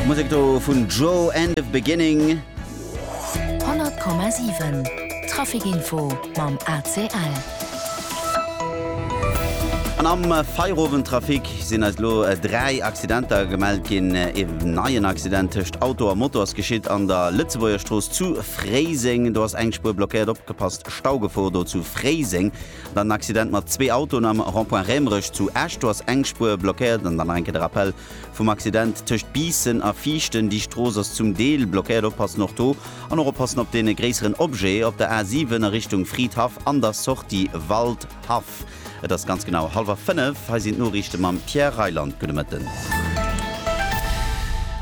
Musek do vun Joe and of Beginning. 100,7 Traficinfo mam ACL. An am Feierowendtrafic sinn eis lo äh, dräi Accidenter gemellt ginn. Äh, e neien Accident tëscht Auto a Motor ass geschitt an der Lëtzebuerger Strooss zu Fréiseng. Do ass eng Spur blockéiert opgepasst. Staugefor do zu Fréiseng. Dann en Accident mat zwee Autoen am Rond-point Rämerech zu Esch. Do ass eng Spuer blockéiert. An dann nach eng Kéier de Rappell vum Accident tëscht Biissen a Viichten. Déi Strooss ass zum Deel blockéiert. Oppassen och do. An och oppassen op dee gréisseren Objet op der A 7 a Richtung Fridhaff an der Sortie Waldhaff. Et ass ganz genau hallwer fënnef. Hei sinn d'Noriichte mam Pierre Reyland. Gudde Mëtten.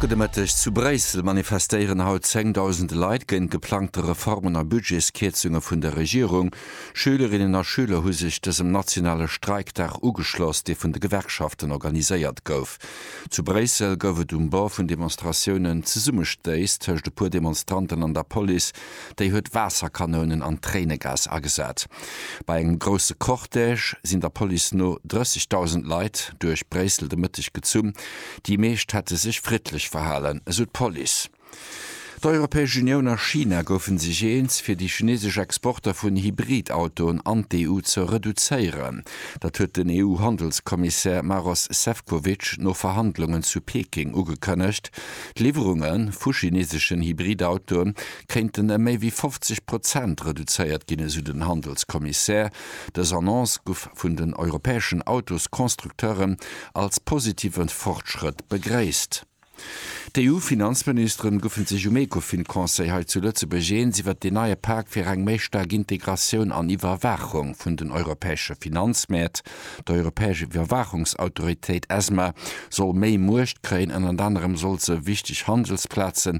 Gudde Mëtteg. Zu Bréissel manifestéieren haut zéngdausende Leit géint geplangte Reformen a Budgetskierzunge vun der Regierung. Schülerinnen a Schüler hu sech dësem nationale Streikdag ugeschloss, dee vun de Gewerkschaften organiséiert gouf. Zu Bréissel gouf et um Bord vun Demonstratiounen Zesummestéiss tëscht e puer Demonstranten an der Police, déi huet Waasserkanounen an Tréinegas agesat. Bei engem grousse Cortège sinn der Police no 30.000 Leit duerch Bréissel de Mëtteg gezunn. Déi meescht hätte sech friddlech verhalen, esou d'Police. D'Europäesch Unioun a China goufe sech eens, fir déi chinesesch Exporter vun Hybrid-Autoen an d'EU ze reduzéieren. Dat huet den EU-Handelskommissär Maros Sefcovic no Verhandlungen zu Peking ugekënnegt. D'Liwwerunge vu chineseschen Hybrid-Autoe kéinten ëm méi wéi 50 Prozent reduzéiert ginn, esou den Handelskommissär. Dës Annonce gouf vun den europäeschen Autosconstructeuren als positive Fortschrëtt begréisst. D'EU-Finanzministeren goufen sech um Ecofin-Conseil hei zu Lëtzebuerg eens iwwert deen neie Pak fir eng méi staark Integratioun an Iwwerwaachung vun den europäesche Finanzmäert. D'Europäesch Iwwerwaachungsautoritéit, ESMA, soll méi Muecht kréien, ënnert anerem soll se wichteg Handelsplazen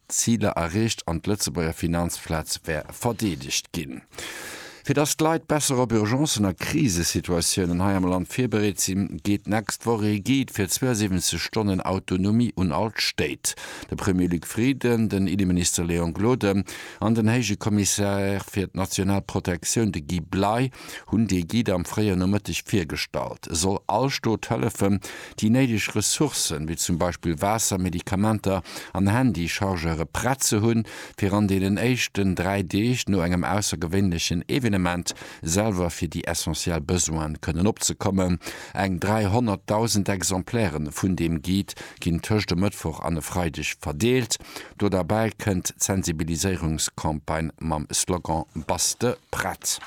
Ziler erreecht an d'Lëtzebuerger Finanzplaz wär verdeedegt ginn. Fir dass d'Leit besser op Urgencen a Krisesituatiounen hei am Land virbereet sinn, geet d'nächst Woch ee Guide fir 72 Stonnen Autonomie un all d'Stéit. De Premier Luc Frieden, den Inneminister Léon Gloden an den Héije Kommissär fir d'national Protektioun, de Guy Bley, hunn dee Guide am fréien Nomëtteg virgestallt. E soll all Stot hëllefen, déi néideg Ressourcen, wéi zum Beispill Waasser, Medikamenter an Handy-Chargeure prett ze hunn, fir an deenen éischten dräi Deeg no engem aussergewéinlechen Evenement selwer fir déi essentiell Besoine kënnen opzekommen. Eng 300.000 Exemplaire vun deem Guide ginn tëscht e Mëttwoch an e Freideg verdeelt. Do derbäi kënnt d'Sensibiliséierungscampagne mam Slogan Bass de prett!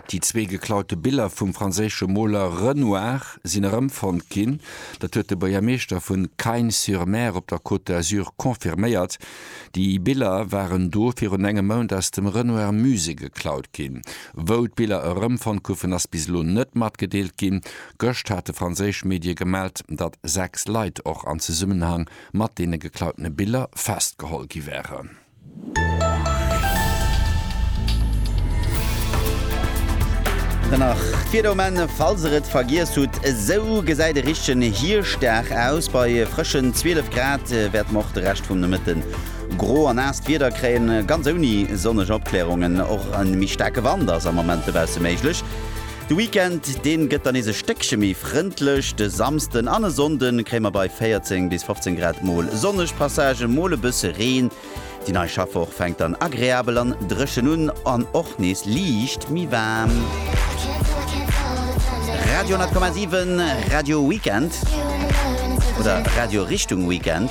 Déi zwee geklaute Biller vum franséische Moler Renoir sinn erëmfonnt ginn. Dat huet de Buergermeeschter vu Cagnes-sur-Mer op der Côte d'Azur confirméiert. Déi Biller waren do virun engem Mount aus dem Renoir Musée geklaut ginn. Wou d'Biller erëmfonnt goufen, ass bis elo net matgedeelt ginn. Gëscht hate franséisch Medie gemellt, datt sechs Leit och an Zesummenhang mat deene geklautene Biller festgeholl gi wären. Nach d'Wieder um Enn, falls der et vergiess hutt. Esou gesäit e richtegen Hirschdag aus. Bei frëschen 12 Grad wäerte mer och de Rescht vum Nomëtte gro a naasst Wieder kréien, ganz ouni sonneg Opklärungen. Och e méi staarke Wand ass am Moment dobausse méiglech. De Weekend, deen gëtt dann nees e Stéckche méi frëndlech. De Samsden an e Sonnden kréie mer bei 14 bis 15 Grad mol sonneg Passagen, mol e bësse Reen. Déi nei Schaffwoch fänkt dann agreabel an dréchen un an och nees liicht méi waarm. Radio 10,7, Radio Weekend oder Radio Richtung Weekend.